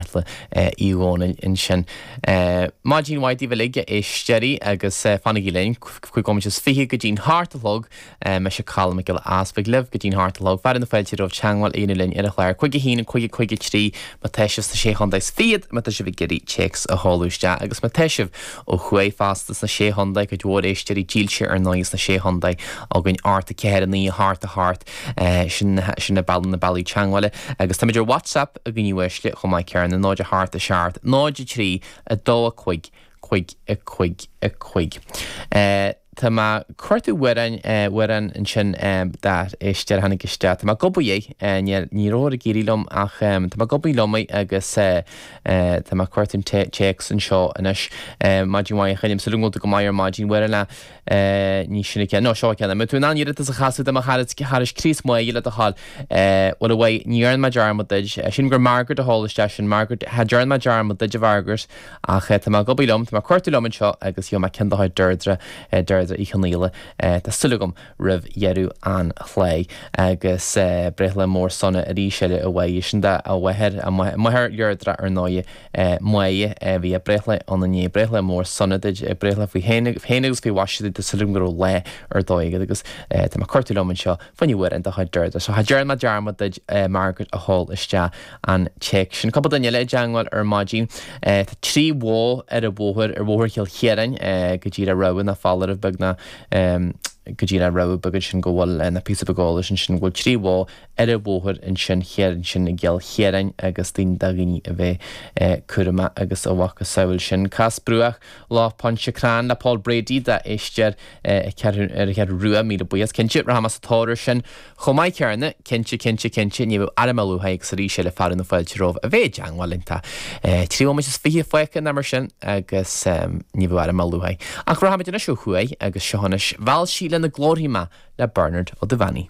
Aodh Dhónaill ansin. Maidin mhaith daoibh uilig, a éisteoirí, agus fanaigí linn cúig nóiméad is fiche go dtí'n hocht a chlog. Mise Colm Mac Giolla Easpaig libh go dtí'n hocht a chlog. Fearadh na fáilte romhaibh teagmháil a dhéanamh linn ar an chlár cúig a haon, cúig, cúig a trí má tá sibh sna Sé Chontae is Fichead, má tá sibh ag iarraidh téacs a sheoladh isteach, agus má tá sibh ó thuaidh fosta sna Sé Chontae, cuid mhór éisteoirí dílse ar ndóigh sna Sé Chontae againn, ocht 4, 9, a hocht, a hocht. Sin na bealaí teagmhála. Agus táimid ar Whatsapp. a dhaoine uaisle chomh maith céarna, 0 a hocht a seacht, 0 a trí, 2 a cúig, cúig a cúig a cúig. Tá mé cuartú amhráin, amhrán ansin that is deir tháinig isteach, tá mé ag obair air, níl, ní raibh ag éirí liom ach tá mé ag obair liom air agus tá mé cuartú an téacs anseo anois. Maidin mhaith a Choilm, súil agam go bhfuil tú go maith ar maidin, uaireadh le. Ní sin an ceann. No, seo an ceann. An bhfuil tú in ann iarratas a chasadh do mo charas Críost May le do thoil? Bhuel, a Mhay, ní dhearna mé dearmad duid. Sílim gur Margaret a chuir isteach sin. Margaret, cha dearna mé dearmad duid, a Mhargaret, ach tá mé ag obair liom, tá mé ag cuartú liom anseo agus gheobhaidh mé ceann de chuid Deirdre, Deirdre Uí Chonaola, tá súil agam, roimh dheireadh an chláir. Agus breithlá mór sona arís eile, a Mhay. Sin de, a mháthair, a máthair Dheirdre, ar ndóighe. May a bhí a breithlá ann inné, breithlá mór sona duid, breithlá faoi shéan agus faoi mhaise duid, tá súil agam go raibh lá ar dóigh agat agus tá mé cuartú liom anseo fá choinne amhrán de chuid Deirdre. So cha dearn mé dearmad duid Margaret a chuir isteach an téacs sin. Cupla duine eile i dteangmháil ar maidin. Tá trí bhó ar an bhóthar ar bhóthar Chill Chiaráin go díreach rabhadh ná foláireamh beag ná go díreach rabhadh beag ansin go bhfuil ná píosa beag eolais ansin go bhfuil trí bhó ar an bhóthar ansin thiar ansin i gCill Chiaráin agus daoine do dhaoine a bheith cúramach agus a mhacasamhail sin. Cas Bruach Loch Pontchartrain le Paul Brady d'éisteoir ar an Cheathrú Rua, míle buíochas. Cinnte, rachaimid sa tóir air sin chomh maith céarna. Cinnte, cinnte, cinnte, ní raibh ainm luaite agus arís eile fearadh na fáilte romhaibh a bheith i dteangmháil linn tá trí bhomaite is fiche fágtha ná mar sin agus ní raibh ainm luaite ach rachaimid anois ó thuaidh agus seo anois Mheall sí lena glórthaí mé le Bernard Ó Duibheannaigh.